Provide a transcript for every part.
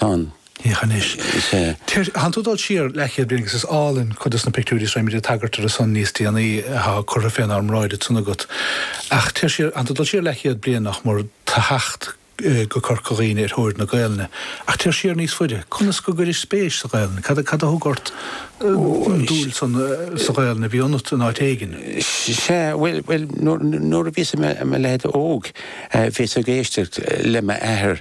ann. Féach anois. Is é. Téir, thánn tú ag dul siar leathchéad bliain agus is álainn cuid de na pictiúirí is beimid ag tagairt dóibhsean níos déanaí atá curtha fénár mbráid anseo agat. Ach téir siar, thánn tú ag dul siar leathchéad bliain nach mór ó thaobh teacht go Corca Dhuibhne ar thóir na Gaelainne. Ach téir siar níos faide. Conas go gcuiris-se spéis sa Ghaelainn? Cad a thug ort an dúil san sa Ghaelainn a bhí ionat in áit éigin? Sea, bhuel, nuair a bhíos i mo leaid óg, bhíos ag éisteacht le m'athair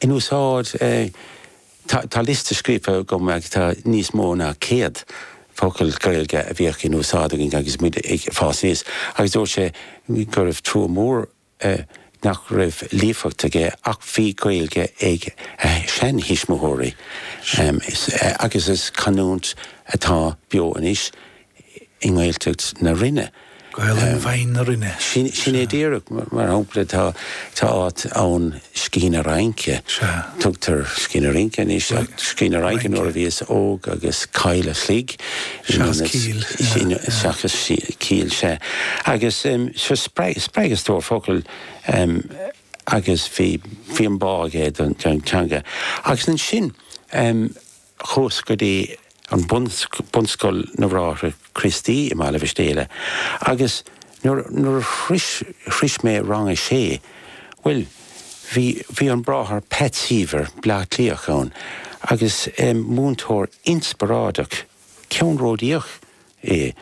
In úsáid é. Tá liosta scríofa agam agus tá níos mó ná céad focal Gaeilge a bhíodh in úsáid againn agus muid ag fás aníos agus dúirt sé go raibh trua mhór nach raibh líofacht aige ach bhí Gaeilge ag a sheantuismitheoirí agus is canúint atá beo anois i nGaeltacht na Rinne. Gaelainn bhinn na Rinne. Sin é díreach, mar shampla, tá áit ann Sceichín a' Raince. Tugtar Sceichín a' Rince anois ach Sceichín a' Raince nuair a bhíos óg agus Caill a' Chluig seachas Cill. Seachas Cill, sea. Agus so spreagadh stór focal agus bhí an bá aige don teanga. Agus ansin chuas go dtí an bunscoil na mBráithre Críostaí i mBaile Mhistéala agus nuair a shrois mé rang a sé, bhuel, bhí, bhí an Bráthair Pat Seaver, Bleá Cliathach, ann agus múinteoir inspioráideach, ceannródaíoch é.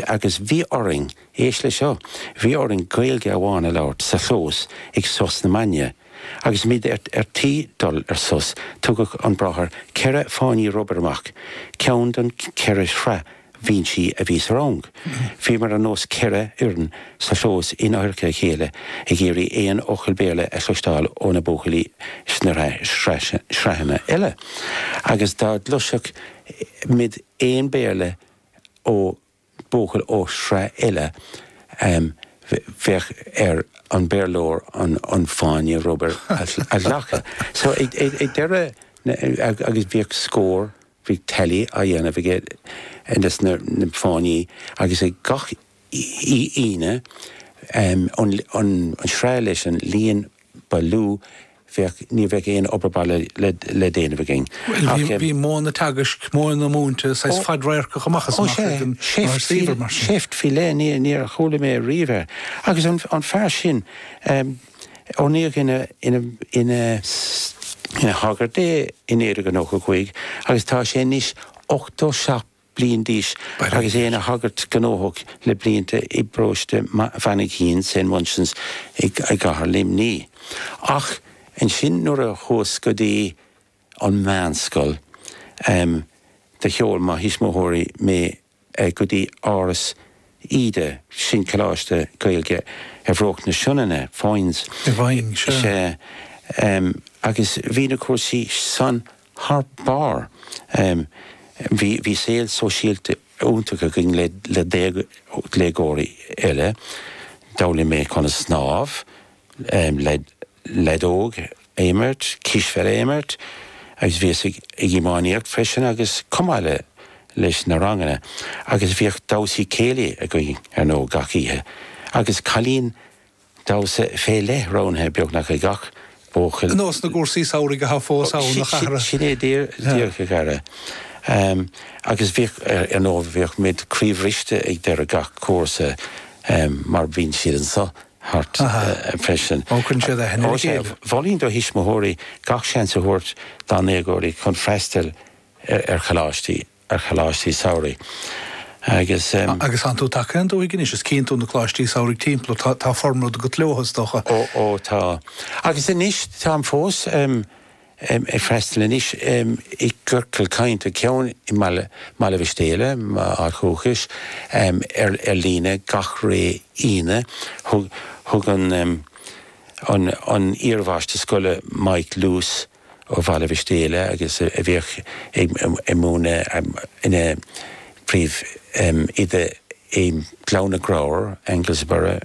Agus bhí orainn, éist leis seo, bhí orainn Gaeilge amháin a labhairt sa chlós ag sos na maidne. Agus muid ar tí dul ar sos, thugadh an bráthair ceithre fáinní rubair amach, ceann don cheithre shraith bhinsí a bhí sa rang. Bhíomar ar nós ceithre fhoireann sa chlós in adharca a chéile ag iarraidh aon fhocal Béarla a chloisteáil ó na buachaillí sna sraitheanna eile. Agus dá gcloisfeadh muid. aon Bhéarla ó buachaill ó shraith eile, bheadh ar an Bhéarlóir an fáinne rubair a ghlacadh. So ag deireadh na, agus bhíodh scór, bhíodh tally á dhéanamh aige ar na fáinní agus ag gach Aoine, an sraith leis an líon ba lú, bheadh, ní bheadh aon obair baile le déanamh againn. Bhuel, bhí modh an teagaisc, modh na múinte saghas fadradharcach amach is amach ag an mBráthair Seaver mar sin. Ó sea, seift faoi leith, níor chuala mé riamh é. Agus an fear sin, oirníodh ina shagart é in naoi déag nócha a cúig agus tá sé anois ochtó seacht bliain d'aois agus é ina shagart gnóthach le blianta i bparóiste Mhainchín, St Munchin's, i gCathair Luimnigh. Ach ansin nuair a chuas go dtí an mheánscoil do sheol mo thuismitheoirí mé go dtí Áras Íde, sin coláiste Gaeilge ar bhruach na Sionainne, Foynes, is ea, agus bhí na cúrsaí san Thar barr, bhí saol sóisialta iontach againn le déagóirí eile. D'fhoghlaim mé conas snámh, leadóg a imirt, cispheil a imirt agus bhíos ag iománaíocht freisin agus chomh maith leis na ranganna agus bhíodh damhsaí céilí againn, ar ndóigh, gach oíche. Agus cailín damhsa fé leith roghnaithe beagnach ag gach buachaill. nós na gcúrsaí samhraidh atá fós ann a chara. Sin é díreach a chara. Agus bhíodh, ar ndóigh, bhíodh muid croíbhriste ag deireadh gach cúrsa mar bíonn siad anseo thart freisin. Bogfainn siad a thinneas céile. Mholfainn do thuismitheoirí gach seans a thabhairt dá ndéagóirí chun freastal ar choláistí. ar choláistí samhraidh agus. Agus an tú tagtha don dúthaigh anois, is cíonn tú na coláistí samhraidh timpeall ort, tá formad agat leo, is dócha. Ó, ó, tá. Agus anois, táim fós ag freastal anois i gciorcal cainte, ceann i mBaile Mhistéala, m'áit dhúchais, ar líne gach ré Aoine. Thug an iarmháistir scoile, Mike Lewis, ó Bhaile Mhistéala agus a bhíodh ag múineadh ina príomh-oide i nGleann na gCreabhar, Anglesborough.